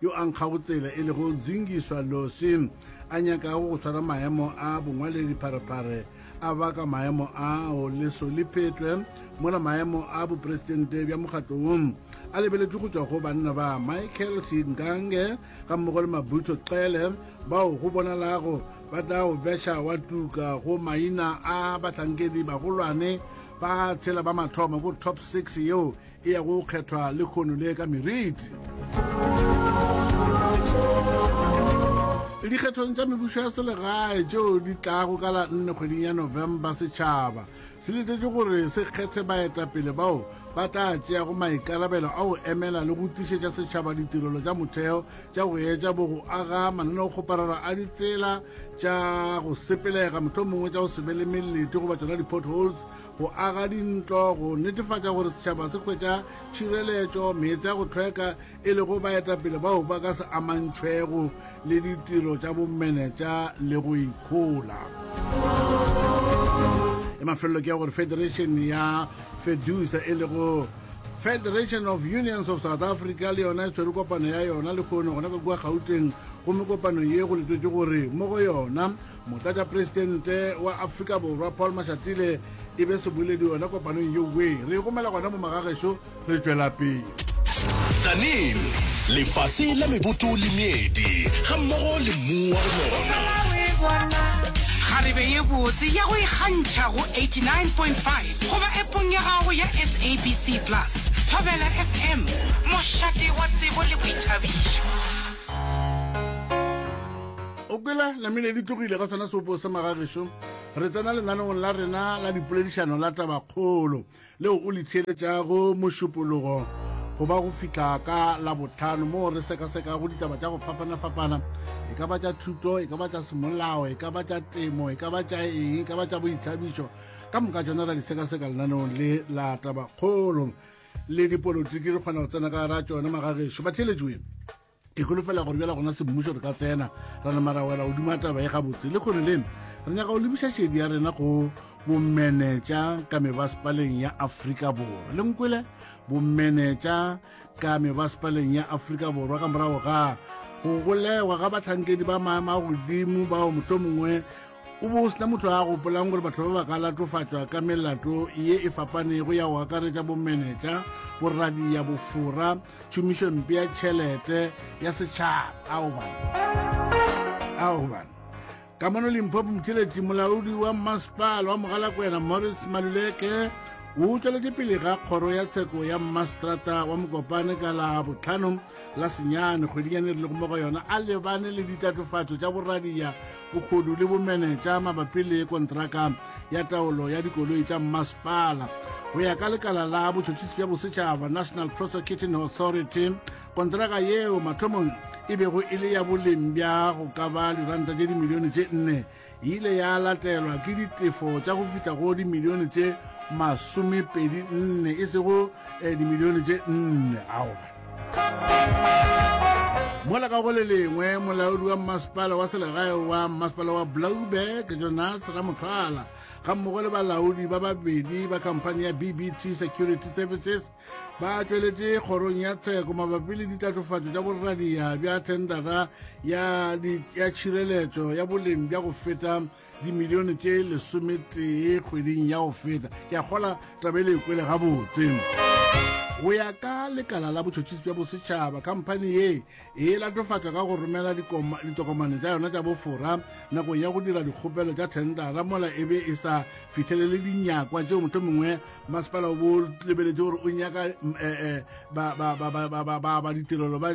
yo a nkgago tsela e lego Zingiswa Losi, a nyakago go tshwara maemo a bongwaledi pharephare a baka maemo ao leso le phetwe mola maemo a bopresidente bja mokgatlo wo a lebeletšwe go tšwa go banna ba Michael Singange ga mmogo le Mabutho Xele bao go bonalago ba tla go beša wa tuka go maina a bahlankedi bagolwane ba tshela ba mathomo go top six yeo e ya go kgethwa le kgono le ka meriti. dikgethong tša mebušo ya selegae tšeo di tlago ka la nne kgweding ya november setšhaba se letetše gore se kgethe baetapele bao ba tla tšeago maikarabelo a go emela le go tlišetša setšhaba ditirelo tša motheo tša go etša bo go aga mananeo kgoparara a ditsela tša go sepelega mohlomongwe tša go se be le melete goba tsona di-potholes go aga dintlo go netefatša gore setšhaba se hwetša tšhireletšo meetse ya go tlhweka e lego baetapele bao ba ka se amantšhwego le ditiro tša bomenetša le go ikhola e mafelelo ke ya gore federation ya fedusa e lego federation of unions of south africa le yona e tshwere kopano ya yona le kgono gona ka kua gauteng gomme kopano ye go letwetse gore mo go yona motlatšapresidente wa afrika borwa paul mashatile e be seboledi yona kopanong ye we re gomela gona mo magagešo re tšwela pele tsanin lefase la meboto le meedi ga mmogo le mmu wa lona kgarebe ye botse ya go ikgantšha go 89.5 goba epong ya gago ya sabc plus thobela fm mošate wa tsebo le boithabišo o kwela namile di tlogile ka sona seopo se magagešo re tsena lenanong la rena la dipoledišano la tabakgolo leo o le theeletšago mošupologo go ba go fitlha ka la botlhano moo re sekasekago ditaba tša go fapana-fapana e ka ba tša thuto e ka ba tša semolao e ka ba tša temo e ka ba tša eng e ka ba tša boithabišo ka moka tsona ra di sekaseka lenanong le la tabakgolo le dipolotiki re kgona go tsena ka ra tsone magagešo ba theeletšoeng ke golofela gore bjala gona semmušo re ka tsena ra nama ra wela godimo ya taba e gabotse le kgone leno re nyaka go lebiša šedi ya rena go bomenetša ka mebasepaleng ya aforika borwa le nkwele bomenetša ka mebasepaleng ya aforika borwa ka morago ga go golegwa ga batlhankedi ba maema a godimo bao moto mongwe o bo o sena motho a gopolang gore batho ba ba ka latofatšwa ka melato ye e fapanego ya go akaretša bomenetša boradiya bofora tšhomišo mpe ya tšhelete ya setšhaba ao bana ao bana ka mono limphopo motšweletši molaodi wa mmasepala wa mogalakwena morris maluleke o tšweletše pele ga kgoro ya tsheko ya mmaseterata wa mokopane ka la botlhano la senyane kgwedinyane re lego mo go yona a lebane le ditatofatso tša boradiya bogodu le bomenetša mabapi le kontraka ya taolo ya dikoloi tša mmasepala go ya ka lekala la botšhotšhisi bja bosetšhaba national prosecuting authority kontraka yeo mathomong e bego e le ya boleng bja go ka ba diranta tše dimilione tše nne e ile ya latelwa ke ditefo tša go fihla go dimilione tše masomepedi nne e sego eh, dimilione tše nne aoba mola ka go le lengwe molaodi wa mmasepala wa selegae wa mmasepala wa blauberg jonas ramotlhala ga mmogo le balaodi ba babedi ba khamphani ya bbt security services ba tšweletše kgorong ya tsheko mabapi le ditlatofatšo tša borradia bja thendara ya tšhireletšo ya boleng bja go feta dimilione tše lesometee kgweding ya go feta ke a kgola tabele e kwele gabotse go ya ka lekala la botšhotšhisi bja bosetšhaba khamphani ye e latofatša ka go romela ditokomane tša yona tša bofora nakong ya go dira dikgopelo tša thendara mola e be e sa fitlhelele dinyakwa tšeo motlho mongwe masepala o bo lebeletše gore o nyaka eh, eh, ba ditirelo ba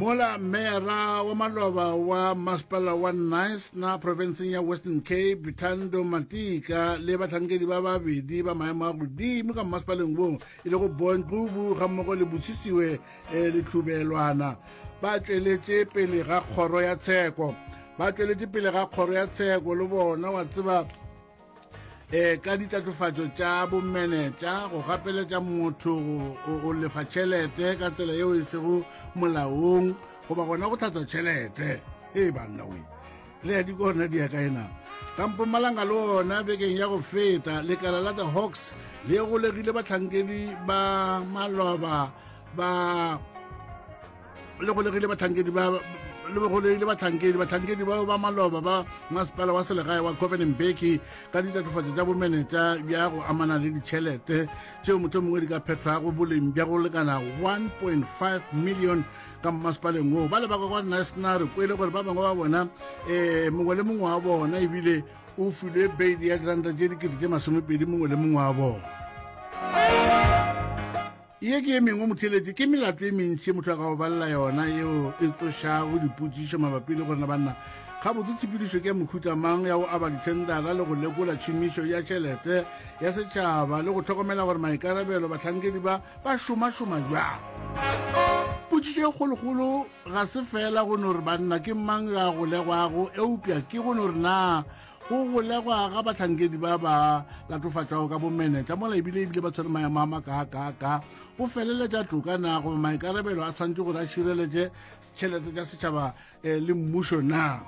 Mola meyara wa maloba wa masepala wa Knysna profenseng ya Western Cape Thando Matika le bahlankedi ba babedi ba maemo a godimo ka masepaleng wo e lego Bon Qubu gammogo le Bosisiwe eh, Letlhubelwana ba tšweletše pele ga kgoro ya tsheko ba tšweletše pele ga kgoro ya tsheko le bona wa tseba e ka ditatofatšo tša bomenetša go gapeletša motho o lefa tšhelete ka tsela yeo e sego molaong goba gona go tlhatswa tšhelete e banna we le ya dikona di ya ka ena kampo malanga le ona bekeng ya go feta lekala la the hawks le golegile batlhankedi ba maloba ba le golegile batlhankedi ba le begolegile batlhankedi batlhankedi bao ba maloba ba masepala wa selegae wa covenant beki ka ditatofatso tša bomenetša bja go amana le ditšhelete tšeo motho mongwe di ka phethwago boleng bja go lekana 1.5 million ka mmasepaleng woo ba lebaka kwa nasnare ko e le gore ba bangwe ba bona um mongwe le mongwe wa bona ebile o filwe beile ya diranta tše dikete tše masomepedi mongwe le mongwe wa bona Ye ke ye mengwe motheletše ke melato e mentši ye motho a ka go balela yona yeo e tsošago dipotšišo mabapi le gore na banna gabotse tshepedišo ke ya mohuta mang ya go aba dithendara le go lekola tšhomišo ya tšhelete ya setšhaba le go tlhokomela gore maikarabelo batlhankedi ba ba šomašoma bjang potšišo e kgolokgolo ga se fela go no re banna ke mang yo a golegwago eupša ke go no re na Go golegwa ga bahlankedi ba ba latofatšwago ka bomenetla mola ebile ebile ba tshwere maemo a makaakaaka go feleletša toka na goba maikarabelo a tshwanetse gore a šireletše tšhelete tša setšhaba eh, le mmušo na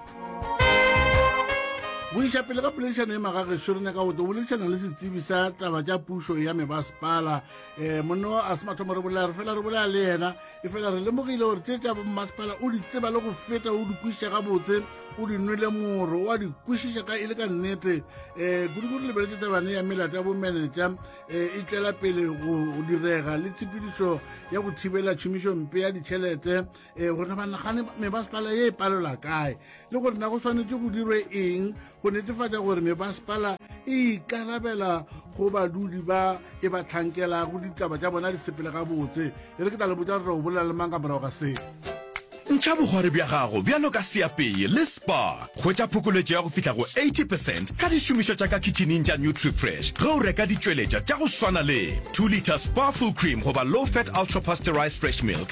go iša pele ka poledišano e magageso re nyaka go tlo boledišana le setsebi sa taba tša pušo ya mebasepala um eh, monno a se mathomo re bolela re fela re bolela le yena efela re lemogile gore tše tša bommasepala o di tseba le go feta o di kwešiša gabotse o di nwele moro o a di kwešiša ka e le ka nnete um eh, kudikudi lebeletse tabane ya melato ya bomenetša um e tlela pele go direga le tshepedišo ya go thibela tšhomišompe ya ditšhelete um eh, gore na banagane memasepala ye e palelwa kae le gore na go swanetse go dirwe eng go netefatša gore mebasepala e ikarabela go badudi ba e ba tlhankelago ditaba tša bona di sepele gabotse e re ke tla le botša gore o bolela le mang ka morago ga se ntšha bogwari bja gago bjalo ka seapeye le spa hwetša phokoletšo ya go fihla go 80 percent ka dišomišwa tša ka khitšhining tša nutrifresh ge o reka ditšweletša tša go swana le 2 litre spa full cream goba low fat ultra pasterized fresh milk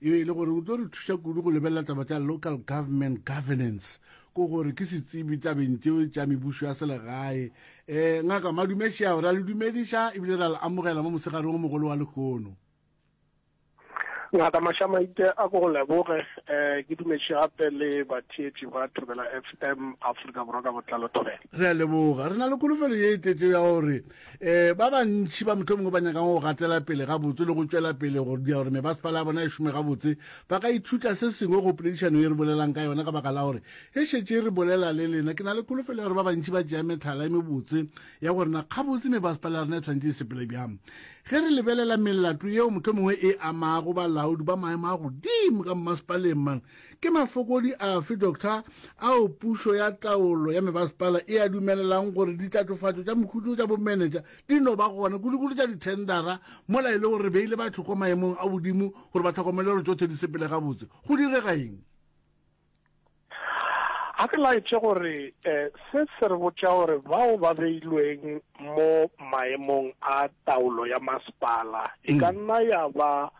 e be e le gore o tlo re thuša kudu go lebelela taba tša local government governance ko gore ke setsibi tabeng tšeo tša mebušo ya selegae um ngaka madumešea ra le dumediša ebile ra le amogela mo mosegareng o mogolo wa lekgono ngaka mašamaite a ko go leboge um ke dumetše gape le batheetši ba thobela f m afrika borwa ka botlalo thobela re a leboga re na le kolofelo ye e tletšeo ya gore um ba bantši ba mohlomongwe ba nyakang go gatela pele gabotse le go tšwela pele go dia gore mebasepala ya bona e šome gabotse ba ka ithuta se sengwe go poledišano e re bolelang ka yona ka baka la gore e šetše e re bolela le lena ke na le kholofelo ya gore ba bantši ba tšea metlhala e mebotse ya gore na gabotse mebasepala ya rena e tshwanetse e sepele bjang ge re lebelela melato yeo mohlomongwe e amago balaodi ba maemo a godimo ka mmasepaleng man Ke mafokodi afe, Doctor, ao pušo ya taolo ya mebasepala e a dumelelang gore ditlatofatšo tša mokhutšo tša bomenetša di no ba gona, kudukudu tša dithendara, mola e le gore re beile batho kwa maemong a godimo gore ba tlhokomele gore tšohle di sepele gabotse? Go direga eng? A ke laetše gore se se re botša gore bao ba beilweng mo maemong a taolo ya masepala e ka nna ya ba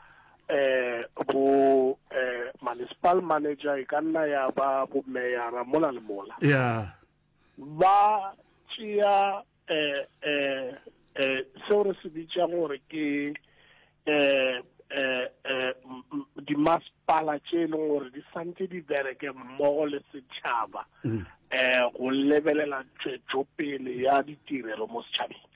Eh, bo eh, municipal manager e ka nna ya ba bo meyara mola le mola ya ba tšea eh, eh, eh, seo re se bitšang gore ke eh, eh, eh, m- m- dimasepala tše e leng gore di santse di bereke mmogo le setšhaba um go lebelela tšwetšopele ya ditirelo mo setšhabeng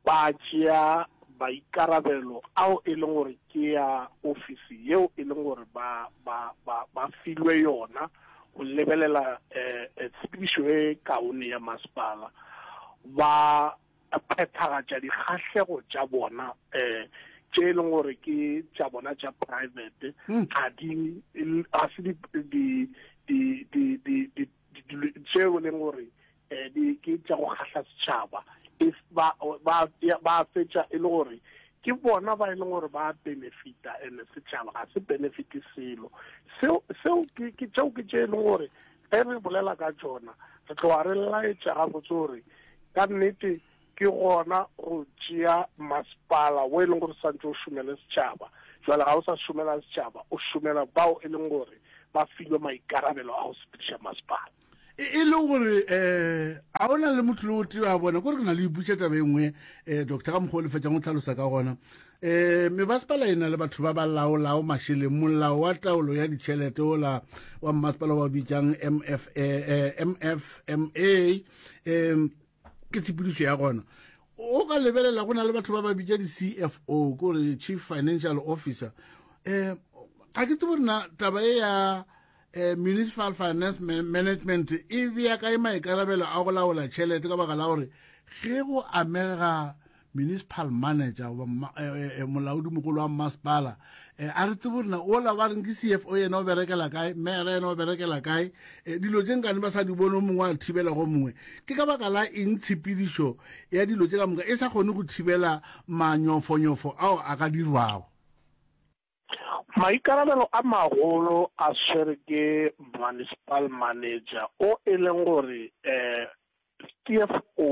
ba tšea maikarabelo ao e leng gore ke a ofisi yeo e leng gore ba, ba, ba, ba filwe yona go lebelela um tshepedišo e kaone ya masepala, ba phethagatša dikgahlego tša bona um tše e leng gore ke tša bona tša private, ga di, ga se di, di, di, di, di, di ditulo tšeo e leng gore um di ke tša go kgahla setšhaba ba fetša e le gore ke bona ba e leng gore ba benefita and setšhaba ga se benefite selo seo ke tšeo ke tše e leng gore ge re bolela ka tsona re tloga re laetša gabotse gore ka nnete ke gona go tšea masepala wo e leng gore santse o šomele setšhaba jwale ga o sa šomela setšhaba o šomela bao e leng gore ba filwe maikarabelo a go sepediša masepala e, e le gore um a o na le motlolo o teo a bona kore ke na le iputša taba e nngwe um doctor ka mokgwa o lefetsang o tlhalosa ka gona um mebasepala e na le batho ba ba laolao mašeleng molao wa taolo ya ditšhelete ola wa mmasepala wa bitsang mf mfma um ke tshepedišo ya gona o ka lebelela go na le batho ba ba bitša di-cfo kore chief financial officer um ga ke tsebo rena taba e ya um municipal finance management e bea kae maikarabelo a go laola tšhelete ka baka la gore ge go amega municipal manager goba eh, eh, eh, molaodi mogolo wa mmasepala um a re tsebo rena ola ba reng ke c f o yena o berekela kae mera yena o berekela kae um dilo tse nkane ba sa di bone o mongwe a thibela go mongwe ke ka baka la eng tshepedišo ya dilo tse ka moka e sa kgone go thibela manyofonyofo ao a ka dirwago Maikarabelo a magolo a swere ke Municipal Manager o e leng gore CFO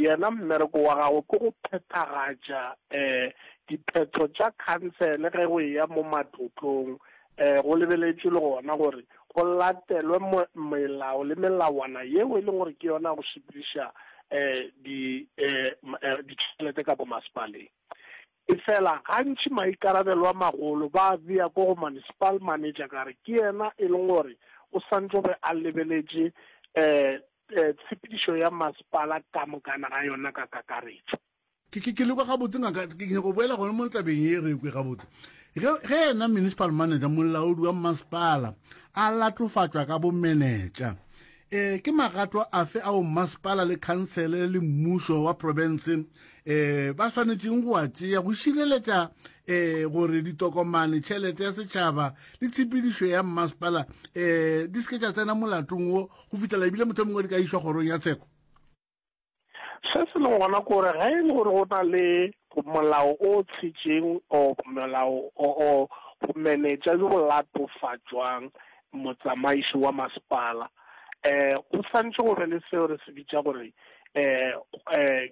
yena mmereko wa gagwe ke go phethagatša diphetho tša khansele ge go eya mo matlotlong. Go lebeletšwe le gona gore go latelwe melao le melawana yeo e leng gore ke yona ya go sepediša ditšhelete ka ko masepaleng. Efela, gantši maikarabelo a magolo ba a bea ko go municipal manager ka re ke yena e leng gore o swantšo be a lebeletše tshepedišo ya masepala ka mokana ga yona ka kakaretšo. Ke le kwa gabotse ngaka, ke nyaka go boela gone mo tabeng ye re kwe gabotse. Ge yena municipal manager, molaodi wa masepala, a latofatšwa ka bomenetša, E, ke magato afe ao mmasepala le khansele le mmušo wa profense e, ba swanetšeng go a tšea go šireletša e, gore ditokomane, tšhelete ya setšhaba le tshepedišo ya mmasepala e, di se ke tša tsena molatong wo go fihlela ebile mohlomongwe di ka išwa kgorong ya tsheko? Se se leng gona ke gore ge e le gore go na le molao o tshitšeng o molao o go manetša jo go latofatšwang motsamaiši wa masepala um go santšhe go be le seo re se bitša gore um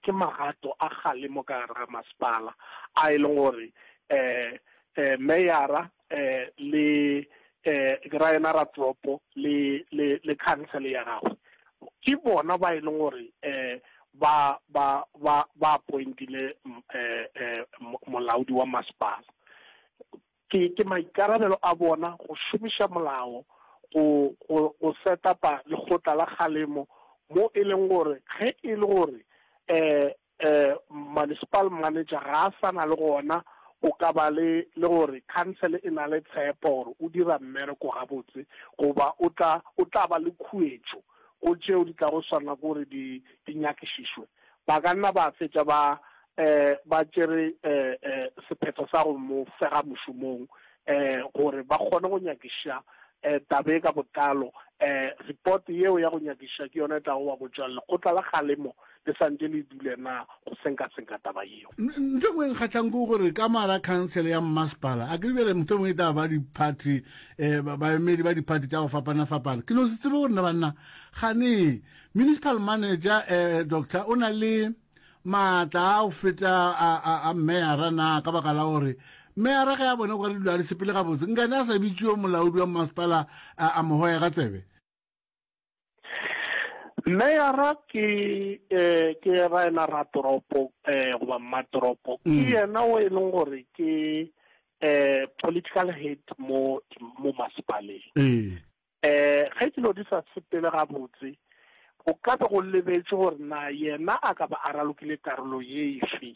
ke magato a kgalemo ka gare ga masepala a e leng gore um meyara eh le eh ra yena ra toropo le le le council ya gagwe ke bona ba e leng gore eh ba ba ba ba appointile mm, eh eh mo- molaodi wa masepala ke ke maikarabelo a bona go šomiša molao go go go set upa lekgotla la kgalemo mo e leng gore ge e le gore eh Municipal manager ga a sa na le gona, o ka ba le le gore khansele e na le tshepo gore o dira mmereko gabotse goba o tla o tla ba le khuetšo go tšeo di tlago swanela ke gore di di nyakišišwe. Ba ka nna ba fetša ba ba tšere sephetho sa go mo fega mošomong gore ba kgone go nyakiša taba ye ka botlalo. Report yeo ya go nyakiša ke yona e tlago wa botša lekgotla la kgalemo le sa ntše le dule na go senkasenka taba yeo. Ntho engwe e nkgatlhang ke gore ka mara khansele ya mmasepala a ke bjale ntho engwe e taba ba diphathi um baemedi ba diphathi tša go fapana-fapana ke no se tsebe gore na banna gane municipal manager um doctor o na le maatla a go feta a meyara na ka baka la gore meyara ge a bone gore dilo a di sepele gabotse nkane a sa bitšeo molaodi wa mmasepala a mogoya ka tsebe Meyara ke eh ke ra ena ra toropo eh goba mmatoropo ke mm. yena o e leng gore ke eh political head mo mo masipaleng eh eh ge ke lo di sa sepele ga botse go ka be go lebetse gore na yena a ka ba a ralokile karolo ye ife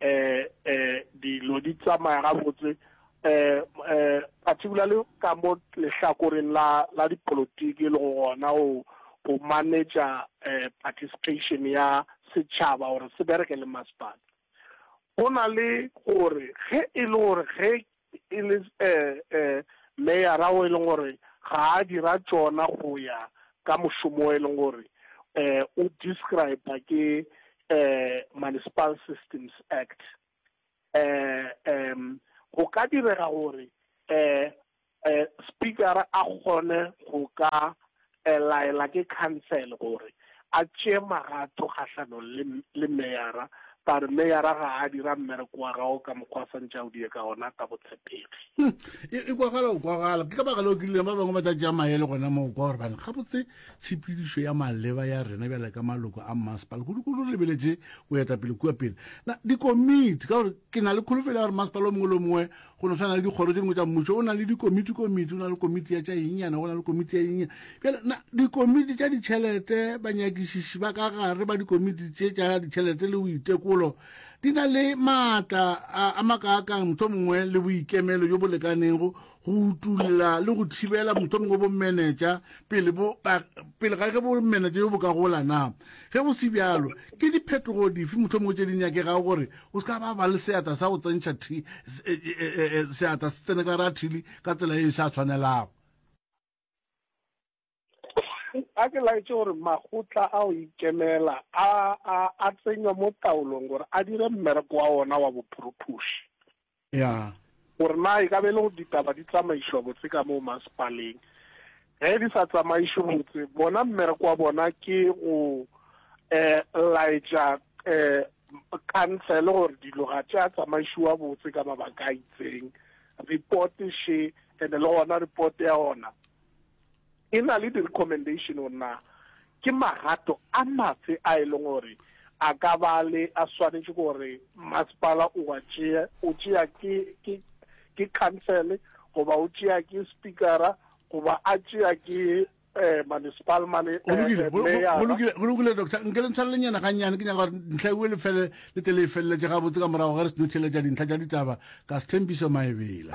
eh, eh, dilo di tsamaya gabotse eh, eh, particularly ka mo lehlakoreng la, la dipolotiki le go gona o go manetša eh, participation ya setšhaba gore se bereke le masepala go na le gore ge e le gore ge e le meyara o e leng gore ga a dira tšona go ya ka mošomo o e leng gore o describe ke Municipal Systems Act. Go ka direga gore Speaker a kgone go ka E laela ke khansele gore a tšee magato kgahlanong le, le meyara, ba re meyara ga a dira mmereko wa gago ka mokgwa a swantše a o dire ka ona ka botshepegi. Hm, e, e kwagala go kwagala. Ke ka baka leo ke rile ba bangwe ba tla tšea maele gona moo, kwa gore bane gabotse tshepedišo ya maleba ya rena bjale ka maloko a mmasepala kudu-kudu lebeletše go eta pele kua pele na dikomiti, ka gore ke na le kholofelo ya gore mmasepala o mongwe le o mongwe Go no swana le dikgoro tše dingwe tša mmušo, o na le dikomitikomiti, o na le komiti ya tša engyana, go na le komiti ya engyana. Bjale na dikomiti tša ditšhelete, banyakišiši ba ka gare ba dikomiti tše tša ditšhelete le boitekolo di na le maatla a, a makaakang motho mongwe le boikemelo jo bo lekanego go utulla le go thibela motho mongwe bomenetša pele, bo, ba, pele ga ge bomenetša jo bo ka gola na? Ge go se bjalo, ke diphetogo dife motho mongwe tše di nyakegago gore O se ka ba ba le seatla sa go tsentšha thi, e, e, e, seatla se tsene ka ra thili ka tsela e e sa tshwanelago. a ke laetse gore makgotla a go ikemela a a a tsenywa mo taolong gore a dire mmereko wa ona wa bophorothoši ya. Gore na e ka ba e le gore ditaba di tsamaišwa botse ka moo masepaleng. Ge di sa tsamaišwe botse, bona mmereko wa bona ke go um laetša um khansele gore dilo ga tša tsamaišiwa botse ka mabaka a itseng. Report še, and-e le gona report ya ona E na le di-recommendation gore na ke magato a mafe a e leng gore a ka ba le a swanetše gore masepala o a tšea, o tšea ke ke ke council goba o tšea ke speakera goba a tšea ke eh municipal mane go lokile go lokile go lokile doctor nke le ntshware lenyana ga nyane ke nyaka gore ntlha e le fele le tele e feleletse ga botse ka morago ga re seno theletša dintlha tša ditaba ka sethempiso maebela